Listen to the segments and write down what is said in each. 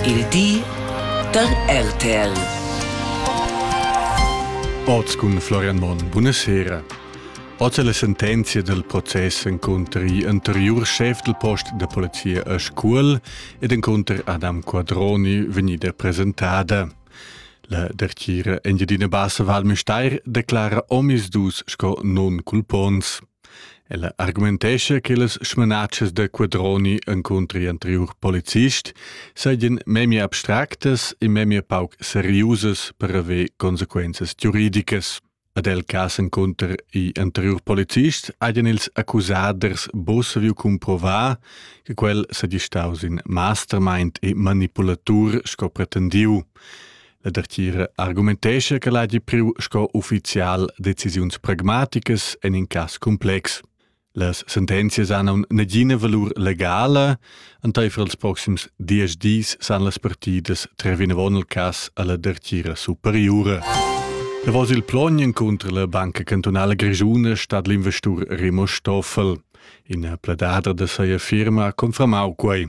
Il di da RTL. Oz cun Florian Monn. Buonasera. Oz è la sentenzia del processo incontro gli anterior chef del post de polizia a Scuol ed incontro Adam Quadroni vegnida presentada. La dertgira Engiadina Bassa Val Mesteir declara omis dus sco non culpons. Ella argumentescha che las smanatschas da Quadroni encunter anteriur policist seigien memia abstractas e memia pauc seriusas per haver consequenzas giuridicas. Ad el cas encunter i anteriur policists haien ils accusaders bo saviu cumprovar che quel sedi staus in mastermind e manipulatur sco pretendiu. La dertgira argumentescha che l'hagi priu sco ufficial decisiuns pragmaticas en in cass complex. Las sentenzias hanno nagina valur legala, enteifer els proxims dies dis san las partidas tre vinavon il cass alla dertgira superiura. Davos il plognen contro la Banca Cantonale Grigiuna stat l'investur Rimo Stoffel. In pledadra da seia firma confermau quei.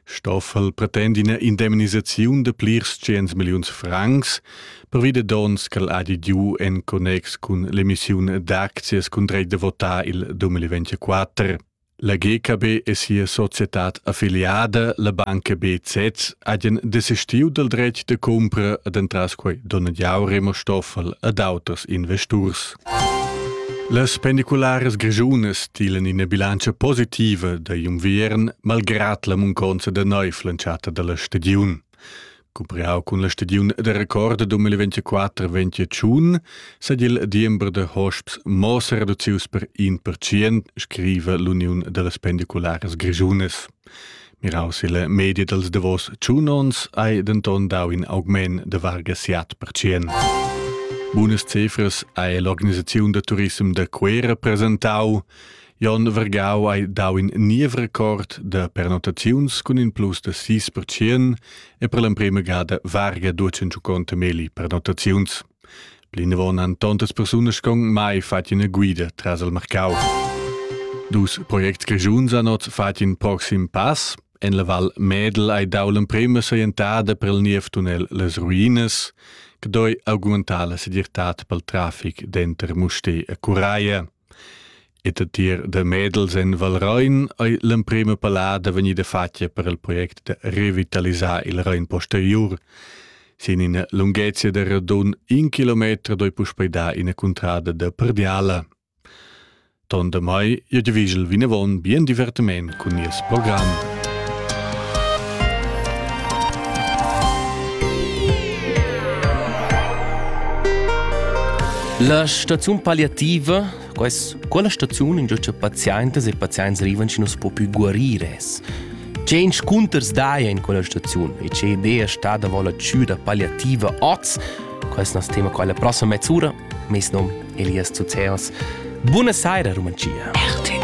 Stoffel pretend ina indemnisaziun de plirs tschient milliuns francs, pervi de dons ch'el ha didiu en connex cun l'emissiun d'aczias cun dreit de votar il 2024. La GKB e sia societad affiliada, la banca BZ, hagen desistiu dal dretg de cumpra ad entras quei Donadiau Remo Stoffel ad auters investurs. Las pendicularas grischunas tilan ina bilantscha positiva da Jumviern malgrat la munconza da neiv lantschata dalla stagiun. Cumpriau cun la stagiun da record 2024-2021 sed il diember da hosps mo sereducius per 1%, scriva l'Uniun dallas pendicularas grischunas. Miraus il media dals davos tschun ons hai denton dau in augment de varga siat percient. Bunas cifras hai l'organisaziun da turism de Cuera presentau. Jon Vergau hai dau in niev record de pernotaziuns cun in plus de 6% e per l'emprema gada varga 250 meli pernotaziuns. Plinavon han tontas persunas con mai fatg ina guida tras il marcau. Dus projects grischuns han oz fatg in proxim pass. En la Val Medel hai dau l'emprema saientada per il niev-tunnel Les Ruinas, che doi augmentar la segirtad pel trafic denter Mustè e Curaia. E da tier da Medels en Valrein ei l'emprema pallada vegnida fatga per il project da revitalisar il Rein posteriur. Sin ina lunghezia da radun in kilometer doi puspei dar ina cuntrada da Perdiala. Ton da mai, ihr Gewigel vinavon, bien divertiment. Cun nies program. La staziun palliativa, quest, quella staziun in giucia pazientas e pazients rivan ci nus po più guarire es. Che inscunters daia in quella staziun e che idea sta da vola ciuda palliativa oz, quest nas tema quella prossima mezz'ura, mes nom Elias Zuzeos. Buona saira, Rumanzia. RTL